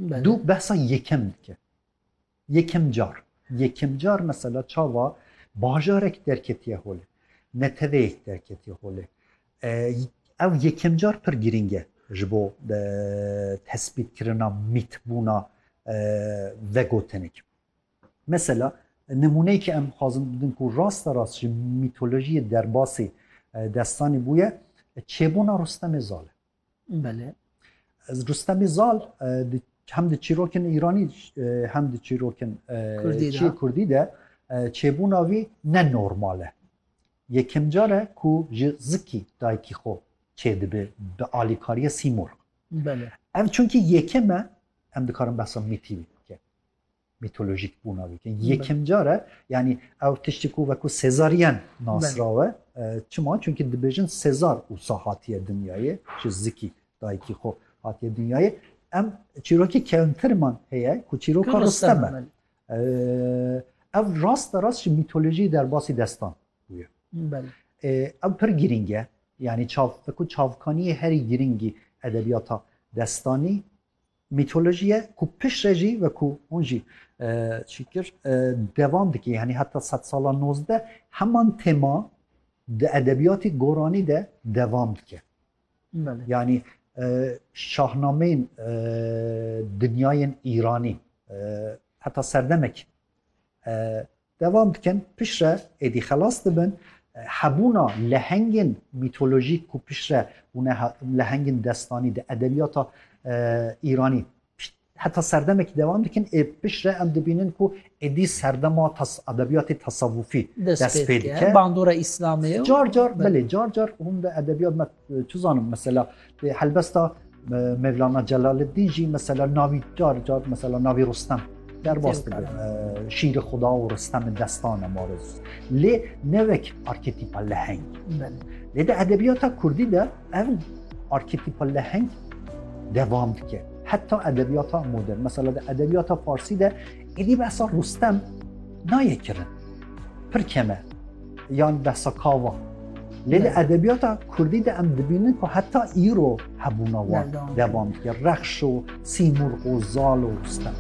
Dû behsa yekem dike. Yekem car. Yekem car mesela çava bajarek derketiye holê. Neteweyek derketiye holê. Ew yekem car pir girîng e ji bo tespîtkirina mîtbûna vegotinek. Mesela nimûneyekê em dixwazin bidin ku rasta rast ji mîtolojiyê derbasî destanî bûye, çêbûna Rustemê Zal e. Belê. Ez Rustemî Zal di hem di çîrokên Îranî hem di çîrokên Kurdî Kurdî de çêbûna wî ne normal e. Yekem car e ku ji zikî dayikî xwe çê dibe bi alîkariya Sîmorg. Belê. Ev çunkî yekem e em dikarin behsa mîtî wî bike. Mîtolojîk bûna wî keng. Yekem car e yanî ew tiştî ku wekû Sezaryen nasrawe. Çima? Çunkî dibêjin Sezar ûsa hatiye dinyayê ji zikî dayikî xwe hatiye dinyayê. Em çîrokî kewntiriman heye ku çîroka Rustem e. Ev rasta rast ji mîtolojî derbasî destan bûye. Ew pir girîng e. Yani çav, wekû çavkaniyê herî girîngî edebiyata destanî Mîtolojiye ku piştre jî wekû hûn jî çîkir devam dikê yanî heta sed sala nozdeh heman tema di edebiyatê goranî de devam dike. Yanî şahnameyên dinyayên îranî heta serdemek Devam dikin, piştre êdî xelas dibin, hebûna lehengên mîtolojîk ku piştre bûne lehengên destanî di edebiyata Îranî heta serdemekî devam dikin ê piştre em dibînin ku êdî serdema edebiyatê tesavûfî dest pê dike. Bandora Îslamê car car belê car car hûn di edebiyat me Çizanim mesela lê helbesta Mevlana Celaleddîn jî mesela navî car car mesela navî Rustem derbas dibe şîri xuda û Rustemê destane mariz. Lê nevek arketîpa leheng. Lê de edebiyata Kurdî de ev arketîpa leheng devam dike. Heta edebiyata modern. Mesela de edebiyata Farsî de êdî behsa Rustem nayê kirin. Pir keme. yan behsa kava. Lê li edebiyata Kurdî de em dibînin ku heta îro hebûna wan devam dike. Rexş û Sîmurg û Zal û Rustem.